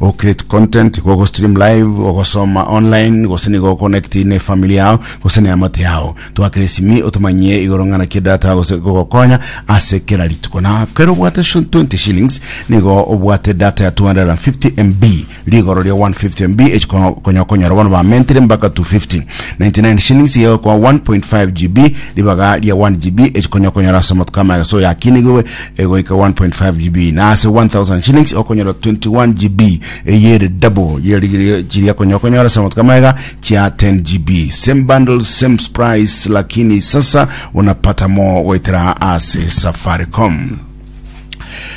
O create content, gogo stream live, ogosoma online, gose nigo okonekti ne family yao gose ne amate yao. Twakera esimi otomanyie igoro ng'ana ki data gose gogokonya ase kera rituko. Na kero obwate sho- 20 shillings nigo obwate data ya 250 MB. Rigoro ria 150 MB echi kono- konya okonyora bono ba mentire mbaka 250. 99 shillings iga egokoa 1.5 GB ribaga ria 1 GB echi konya okonyora ase amatuko amaye gose oyakinigwe egoika 1.5 GB na ase 1000 shillings okonyora 21 GB eyere double ye rigirio chiria konya okonyora ase amatuko amaiga chia 10 GB same bundle same price lakini sasa unapata more goetera ase Safaricom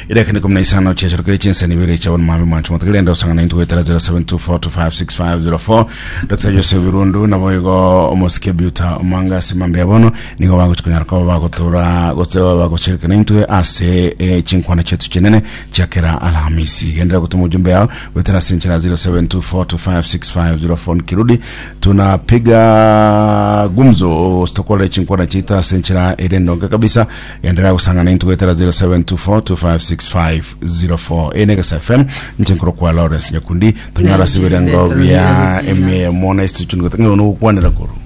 irekane kumi na isano chiacherokire chinsani ibere chia bono mabe mwancho motigire ende osangana intu goetera 0724256504 Dr. Joseph Birundu nabo igo omosike biuta omanga ase mambe ya bono nigo bagochi konyara koba bagotora gose baba bagochirika naintwe ase eh, chinkwana chetu chinene chiakera alhamisi gendera gotuma ujumbe yao gwetera ase enchera 0724256504 kirudi tunapiga gumzo stokorera chinkwana chitu ase enchera ere ndonge kabisa gendera gosanga naintwe gwetera 0724256504 ene gesa fm nchinkoro kwa lawrence nyakundi tonyara ase ebirengo bia emia ya mona institute ngotang'e nokwanera koro